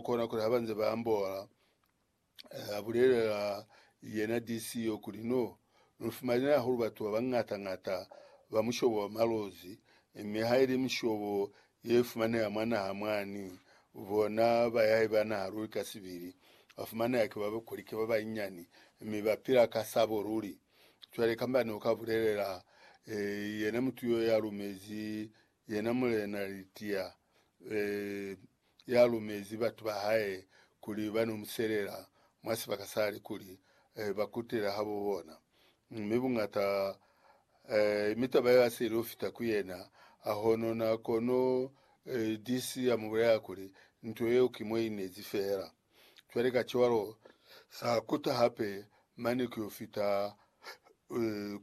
Kona kuli haba nze ba ambola, a bulelela yena DC yo kuli, No lu fumanile hahulu batu ba bañata-ñata ba mushobo wa malozi, mi ha ili mishobo ye fumaneha mwa naha mwani, bona ba ya iba naha luli ka sibili, ba fumaneha ki ba kuli ki ba banyinyani, mi ba pila ka sabo luli. Cwale kamba ne u ka bulelela yena mutu yo ya lumezi yena mulena litiya, ya lumezi batu ba hae kuli ba n'o mu selela mwa sibaka sa li kuli ba kutele habo bona. Mi buñata mi taba yeo ya si il'o fita ku yena, a honona kono DC ya mu bulelela kuli, Nto yeo ki mo i nezi fela. Cwale kacwalo sa kuta hape mane ku y'o fita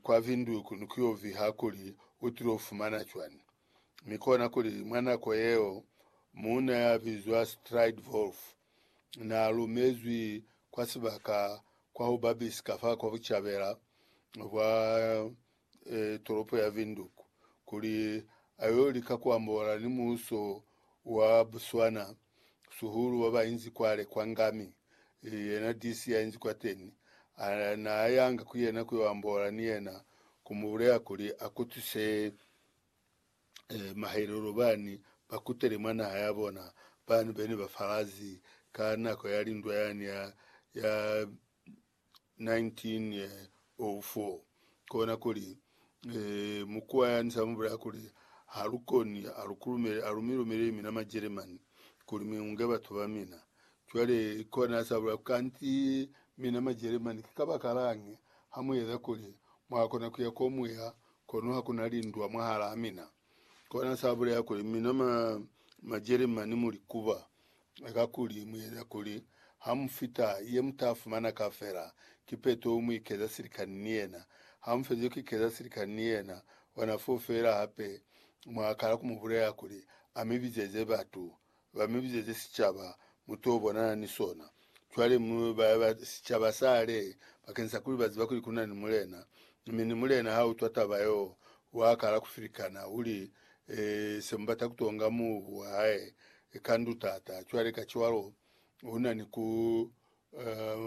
kwa Windhoek ni ku y'o viha kuli u til'o fumana cwani. Mi kona kuli mwa nako yeo, muuna ya bizwa Strijdvulf na lumezwi kwa sibaka kwa ho babis ka fa kwa bucabela bwa e, toropo ya Windhoek kuli a yo lika ku ambola ni muuso wa Botswana, suhulu wa ba inzi kwale kwa Ngami. Yena DC ya inzi kwateni, a na yanga ku yena ku yo ambola ni yena, ku mu bulela kuli a kutwise eh, mahelelo bani bakutele mwa naha ya bona bani bene ba falazi ka nako ya lindwa yani ya, ya 1904 kona kuli eh, mukuwa yani samubulaya kuli halukoni alukulumele alumilumeleli mina majeremani kuli miunge batu ba mina cwale kona sabula kanti mina majeremani kikabakalañi hamuyeza kuli mwakona kuya komuya Kono ha ku na lindwa mwahalaa mina. Kona sa bulela kuli, Mina ma, Majelemani mu likuba. Kakuli, mu yena kuli, ha mu fita, ye mu ta fumana ka fela, ki peto u mu ikeza silikani ni yena. Ha mu fezi ku ikeza silikani ni yena, ona foo feela hape mwa kala ku mu bulela kuli, A mi bizeze batu. Ba mi bizezi sicaba mu t'o bonana ni sona. Cwale mu ba ba sicaba sa le, bakenisakuli ba ziba kuli ku na ni Mulena. Mi ni Mulena ha utwa taba yo, wa kala ku filikana, u li, E, se mu bata ku tonga mubu wa hae, e ka ndu tata. Cwale kacwalo, u na ni ku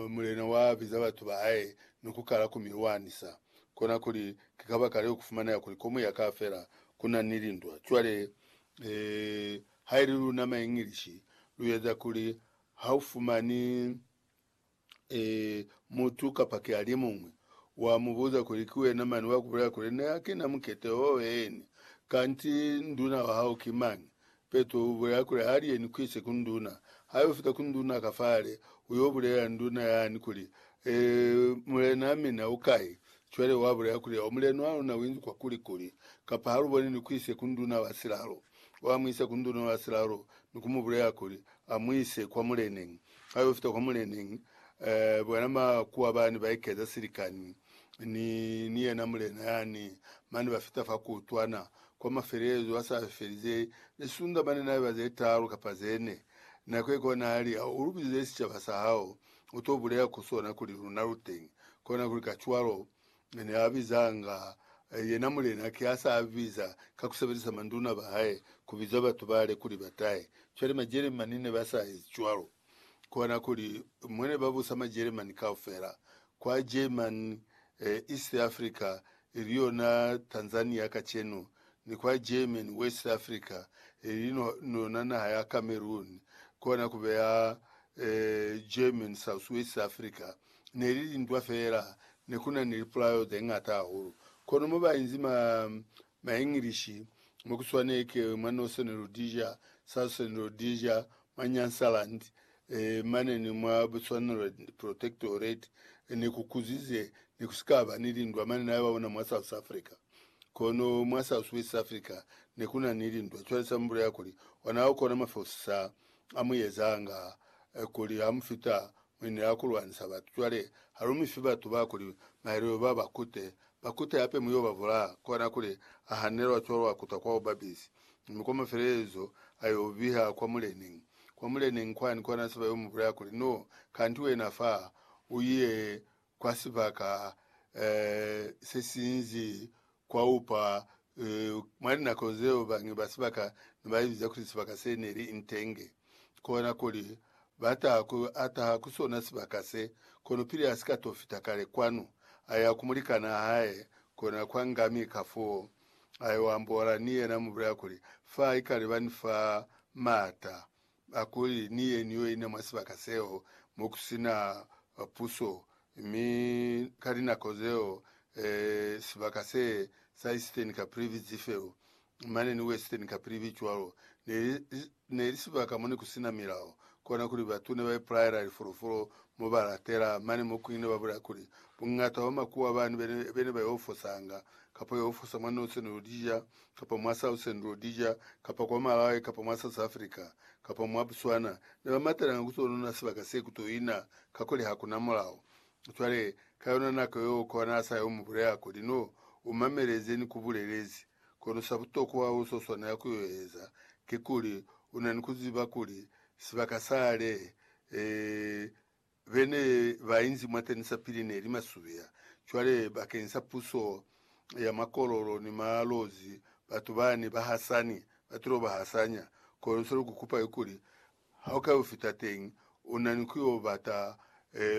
Mulena wa biza batu ba hae ni ku kala ku mi lwanisa. Kona kuli, ki kabakaleo ku fumaneha kuli komu ya ka fela ku na ni lindwa. Cwale, haili luna ma Englishi lu eza kuli ha u fumani mutu kapa ki alimuñwi, wa mu buza kuli ki wena mani wa ku bulela kuli, Ne ha ki na mukete o eeni, kanti nduna wa hao ki mañi? Petro u bulela kuli, Ha li ni kwise ku nduna. Ha yo fita ku nduna ka fale, u yo bulelela nduna yani kuli, Ee, mulena, mina u kai? Cwale wa bulela kuli, O mulena wa luna u inzi kwa kuli kuli, kapa ha lu boni ni kwise ku nduna wa silalo. Wa mu isa ku nduna wa silalo ni ku mu bulelela kuli, A mu ise kwa muleneñi. Ha yo fita kwa muleneñi, ee, bona ba kuwa bani ba ikeza silikani. ni, ni yena mulena yani, mane ba fita fa kuutwana kwa mafelelezo a sa felize, lisunda mane na iba ze taalu kapa ze ne. Nako ikuba na li, Ha u lu bizize sicaba sa hao, u to bulela ku sona kuli luna lu teñi. Kona kuli kacwalo, ne a bizanga yena mulena, ki a sa biza ka ku sebelisa manduna ba hae ku biza batu bale kuli ba tahe. Cwale Majeremani ne ba sa ezi cwalo. kona kuli mwa ne ba busa Majeremani kaufela, kwa German, East Africa, ili yona Tanzania kacenu, ni kwa German, West Africa, ili yona naha ya Cameroon, kona ku beya German, Southwest Africa. Ne li lintwa feela, ne ku na ni lipulaelo ze ñata hahulu. Kono mo ba inzi mwa Englishi, mo ku swanei ke mwa Northern Rhodesia, Southern Rhodesia, mwa Nyansaland, e, mane ni mwa Bechuanaland Protectorate, e, ne ku kuzize, ne ku si ka ba ni lindwa mane na ba ona mwa South Africa. Kono mwa Southwest Africa ne ku na ni lindwa. Cwale sa mu bulela kuli ona ha ku na mafeusisa a mu ezanga, e, kuli ha mu fita Mi ni la ku lwanisa batu. Cwale, ha lu mi fi batu ba kuli maelelo ba ba kute, ba kute hape mu yo ba bulaa, kona kuli, a hanelwa cwalo a kuta kwa bubapisi, mi kwa mafelelezo a yo biha kwa muleneñi, kwa muleneñi kwani, kona se ba yo mu bulaya kuli, No, kanti wena fa, u ye kwa sibaka se sinzi kwa upa. Mwa linako zeo bañi ba sibaka ne ba ibiza kuli sibaka se ne li intenge, kona kuli ba taha ku ataha ku sona sibaka se. Kono pili a si ka to fita kale kwanu, a ya ku mulikanaa hae, kona kwa ngami, kafoo a yo ambola ni yena, mu bulela kuli, Fa ikale ba ni fa maata ba kuli ni ye ni yo ina mwa sibaka seo mo ku si na puso, mi ka linako zeo e, sibaka se sa Eastern Caprivi Dzifelu, mane ni Western Caprivi cwalo, ne li, ne li sibaka mo ne ku si na milao, kona kuli batu ne ba ipulayela lifulufulu mo ba latela. Mane mo kuñwi ne ba bulela kuli, Buñata bwa makuwa bani be ne, be ne ba yo fosanga, kapa yo fosa mwa noso ne lu li ja, kapa mwa Southern Rhodesia, kapa kwa Malawi, kapa mwa South Africa, kapa mwa Botswana, ne ba matelanga ku t'o nuna sibaka se ku t'o ina, kakuli ha ku na mulao. Cwale, ka yona nako yeo, kono a sa yo mu bulela, kuli, No, u mamele ze ni ku bulelezi, kono sa butokwa u s'o swanela ku yo eza, kikuli, u na ni ku ziba kuli, sibaka sale, ee, be ne ba inzi mwateni sapili ne li masubeya. Cwale, bakeng sa puso ya makololo ni malozi, batu bani ba hasani, ba tilo ba hasanya. Kono se lu ku kupa kikuli, ha u ka yo fita teñi, u na ni ku yo bata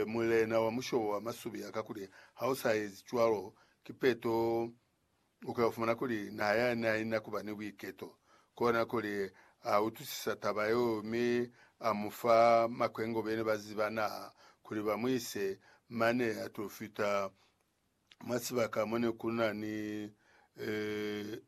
mulena wa mushobo wa masubeya, kakuli ha u sa ezi cwalo, ki peto U ka fumana kuli naha ya ne ha i na ku ba ni buiketo. Kona kuli a utwisisa taba yeo mi a mu fa makwengo bene ba ziba naha kuli ba mu ise mane a t'o fita mwa sibaka mo ne ku na ni,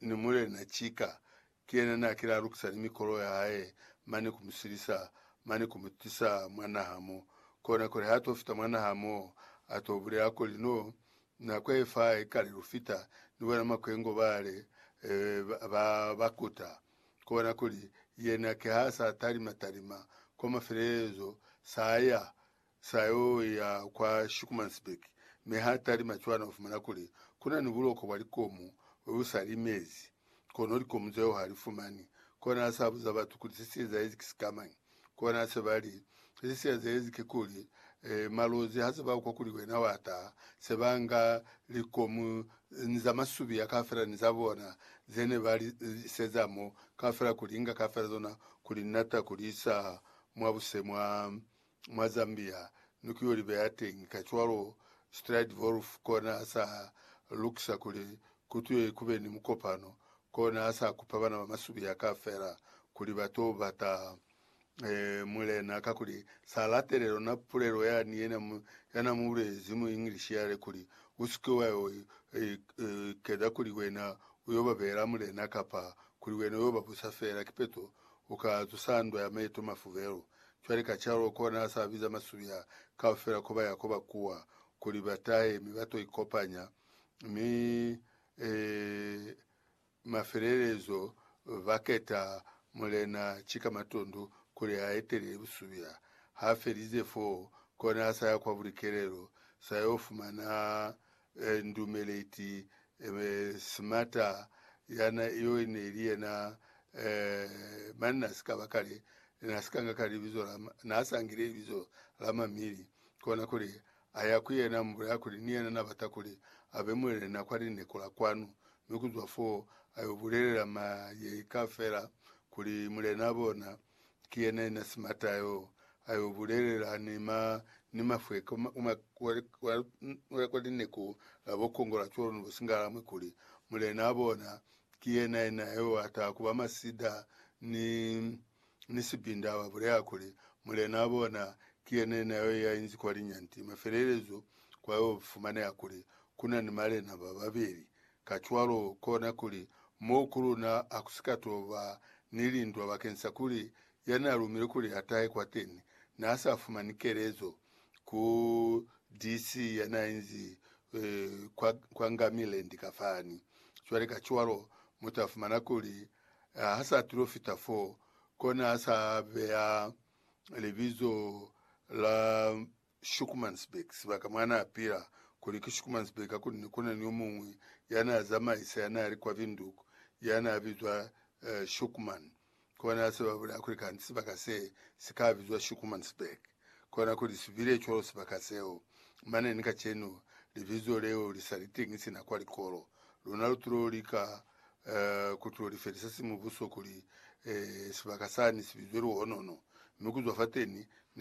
ni mulena cika Ki yena na kile a lukisa ni mikolo ya hae mane ku mu silisa, mane ku mu tisa mwa naha mo. Kona kuli ha to fita mwa naha mo, a to bulela kuli, No, nako ye fa i kale lu fita, ni bona makwengo bale, ee, ba, ba kuta. Kona kuli, yena ki ha sa talima-talima, kwa mafelelezo, sa ya. sa yo ya kwa Schoenemannsberg, mi ha talima cwana u fumana kuli ku na ni buloko bwa likomu bwe bu sa limezi, kono likomu zeo ha li fumani. Kona a sa buza batu kuli se si ezaezi ki sikamañi. Kona se ba li, Se si ezaezi ki kuli, malozi ha se ba kwa kuli wena wa taha, se ba nga likomu ni za masubiya kaufela ni za bona ze ne ba li iseza mo kaufela ku li inga kaufela zona ku li nata ku li isa mwa buse mwa mwa Zambia ni ku yo li beya teñi. Kacwalo, Strijdvorf kona a sa lukisa kuli ku twe ku be ni mukopano, kona a sa kupa bana ba masubiya kaufela kuli ba to bata mulena, kakuli sa latele lona pulelo ya ni yena ya na mu bulezi mu English yale kuli, U si ke wa yo ikeza kuli wena u yo ba beela mulena kapa kuli wena u yo ba busa feela, kipeto u ka zusa ndwa ya maeto mafubelu. Cwale kacwalo kona a sa biza masubi a kaufela ko ba ya ko ba kuwa, kuli ba tahe mi ba to ikopanya, mi e, mafelelezo ba keta mulena ki ka matundu kuli a etelele busubi a. Ha felize foo, kona a sa ya kwa bulikelelo, sa yo fumana ndumeleti Smarta yana yo neli yena mani na si kaba kale na si kanga kale libizo la na sa ngile libizo la mamili kona kuli a ya ku yena mubulaya kuli ni yena na bata kuli abe muelele na kwa lineko la kwanu mi kuzwa foo ayo bulelela mayei kafela kuli mulena bona Ki yena yena simata yo a yo bulelela ni ma, ni mafwe ka ma, uma kwa, kwa, kwa, kwa lineku la bo kongola cwalo ni bo singalamwe kuli, Mulena a bona, ki yena yena yo a taha kuba masida ni, ni sibinda, ba bulela kuli, Mulena a bona, ki yena yena yo ya inzi kwa linyanti. Mafelelezo kwa yo fumaneha kuli, kuna ni malena ba babeli, Kacwalo, kona kuli moo ku luna ha ku si ka to ba ni lindwa bakeni sa kuli ya n'a lumile kuli a tahe kwateni n'a sa fumani kelezo ku DC. ya n'a inzi kwa, kwa Ngamiland ka fani. Cwale, kacwalo, mu ta fumana kuli ha sa tilo fita fo, kona ha sa beya libizo la Schoemannsburg, sibaka mwa n'a pila, kuli ki Schoemannsburg, hakunene ku na ni yo muñwi ya n'a zamaisa ya n'a li kwa Windhoek ya n'a bizwa Schoeman. Kona ha se ba bulaya kuli kanti sibaka se si ka bizwa Schoemannsburg. Kona kuli si bile cwalo sibaka seo. Mane ni kacenu, libizo leo li sa li teñi sina kwa likolo. Luna lu t'o lika ku t'o li felisa simubuso kuli sibaka sani si bizwe Luhonono, mi ku zwa fateni